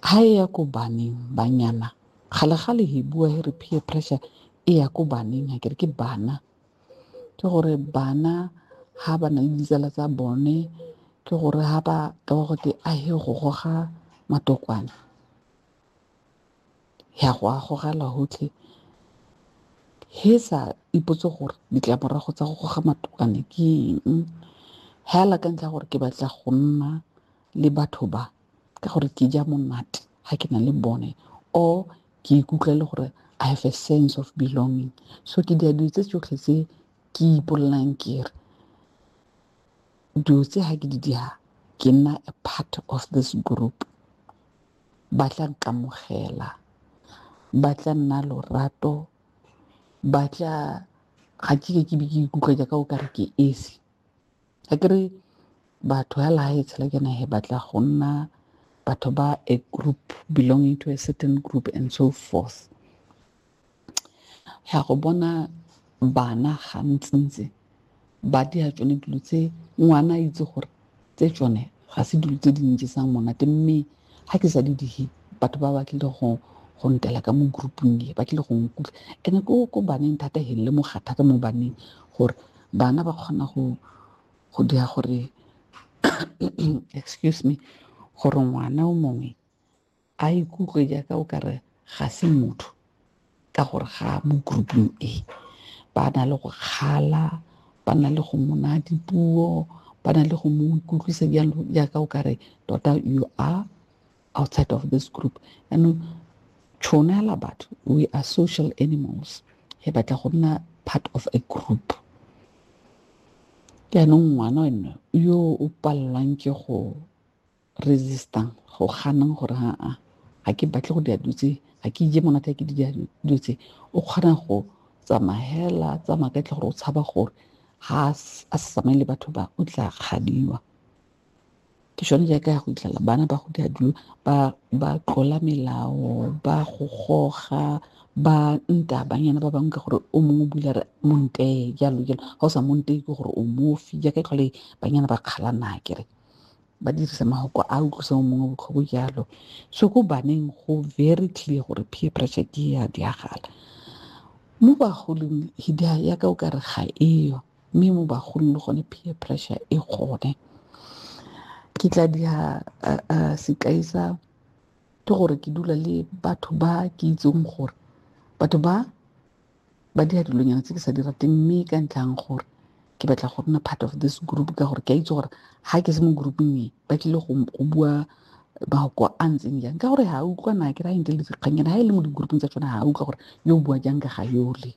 ha e ya ko baneng banyana gale gale he bua he re peer pressure e ya ko baneng ha kere ke bana ke gore bana ha ba na le ditsala tsa bone ke gore ha ba ka ba gote a he go goga matokwane ya go a gogela gotlhe he sa ipotse gore ditlamorago tsa go goga matokwane ke eng hela ka ntlha gore ke batla go nna le batho ba ka gore ke ja monate ga ke na le bone or ke ikutlwa le gore I have a sense of belonging so ke dira dilo tse tsotlhe tse ke ipolelang ke re dilo tse ga ke di dira ke nna a part of this group ba tla nkamogela, ba tla nna lorato, ba tla ga ke be ke ikutlwa jaaka o kare ke esi ga ke re batho hela ha e tshela ke nae ba tla go nna batho ba a group belonging to a certain group and so forth. ya go bona bana gantsintsi ba dia tsone dilo tse ngwana a itse gore tse tsone ga se dilo tse di njesang monate mme ga ke sa di dihe batho ba ba tlile go go ntela ka mo groupung e ba tlile go nkutlwa ene ko ko baneng thata he le moga thata mo baneng gore bana ba kgona go go dira gore excuse me gore ngwana o mongwe a ikutlwe jaaka o kare ga se motho ka gore ga mo grouping e ba na le go kgala ba na le go mona dipuo ba na le go mo ikutlwisa jalo jaaka o kare tota you are outside of this group anong tšhono ya la batho we are social animals he batla go nna part of a group jaanong ngwana ene yo o palelwang ke go resistang go ganang gore aa ga ke batle go dira dilo tse ga ke ije monate ke dira dilo tse o kgona go tsamagela tsamaya ka tle gore o tshaba gore ga a sa tsamaye le batho ba o tla kgadiwa ke sone jaaka ya go itlhela bana ba go dira dilo ba tlola melao ba go goga ba nta banyana ba bangwe ka gore o mongwe o bula re montee jalo jalo ga o sa montee ke gore o mofi jaaka e tlhole banyana ba kgalana kere ba dirisa mahoko a utlwisa o mongwe botlhoko jalo so ko baneng go very clear gore peer pressure ke ya diagala mo bagolong hidia yaka o ka re ga eyo mme mo bagolong le gone peer pressure e gone ke tla dia sekai sa ke gore ke dula le batho ba ke itseng gore batho ba ba dira dilonyana tse ke sa di rateng mme ka ntlhang gore ke batla go nna part of this group ka gore ke a itse gore ga ke se mo grouping e ba tlile go bua mahoko a ntseng jang ka gore ga a utlwa na ke ra eng ke le dikgannyana ga e le mo di-grouping tsa tsone ga a utlwa gore yo o bua jang ka ga yole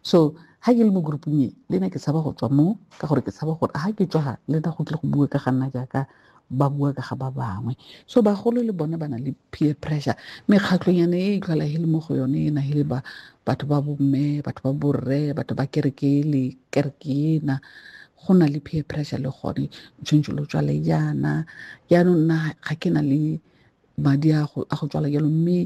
so ga ke le mo grouping e le na ke tshaba go tswa mo ka gore ke tshaba gore ga ke tswa ga le na go tle go bua ka ga nna jaaka ba bua ka ga ba bangwe so bagolo le bone ba na le peer pressure mekgatlhonyane e itlhola e le mo go yone e na e le ba batho ba bomme batho ba borre batho ba kereke le kereke ena go na le peer pressure le gone tshwanetse lo tswale jaana jaanong nna ga ke na le madi a go tswala jalo mme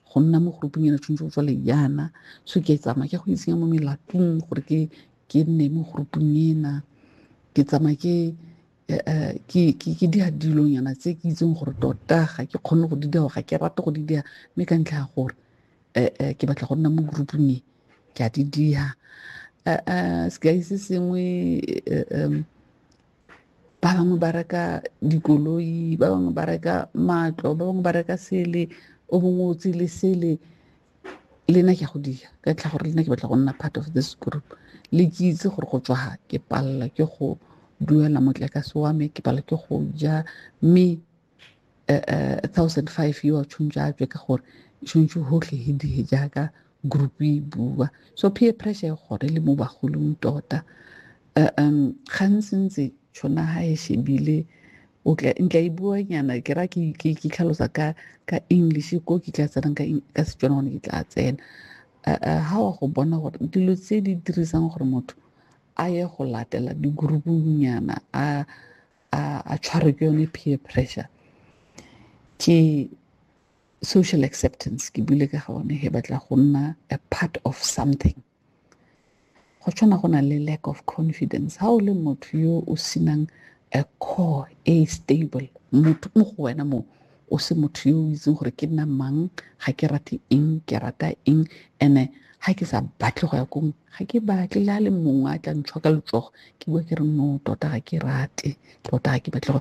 go nna mo groupung ena tshwanetse go tswale jaana so ke tsamaya ke go itsenya mo melatong gore ke ke nne mo groupung ena ke tsamaya ke eh, eh, ke ke ke dia dilonyana tse ke itseng gore tota ga ke kgone go di dia ga ke rate go di dia mme ka ntlha ya gore eh, ke batla go nna mo groupung e ke a di dia sekai se sengwe ba bangwe ba reka dikoloi ba bangwe ba reka matlo ba bangwe ba reka sele o bongwe o tsele sele le nna ke go dira ka tlha gore le nna ke batla go nna part of this group le ke itse gore go tswa ke palela ke go duela motlakase wa me ke pala ke go ja mme eh, eh, thousand five yo a tshwanetse a tswe ka gore tshwanetse gotlhe he die jaaka group e bua so peer pressure e gore le mo bagolong tota eh, um gantsi ntse tshwana ga e shebile o tla ntla e bua nyana ke ra ke ke ke tlhalosa ka ka english ko ke tla tsena ka ka setswana gone ke tla tsena ha wa go bona gore dilo tse di dirisang gore motho a ye go latela di group nyana a a a tshware ke yone peer pressure ke social acceptance ke bile ka gone he batla go nna a part of something go tshwana go na le lack of confidence ha o le motho yo o senang a core e stable motho mo go wena mo o se motho yo o itseng gore ke nna mang ga ke rate eng ke rata eng ene ga ke sa batle go ya kong ga ke batle le a le mongwe a tla ntshwa ka letsogo ke bua ke re no tota ga ke rate tota ga ke batle go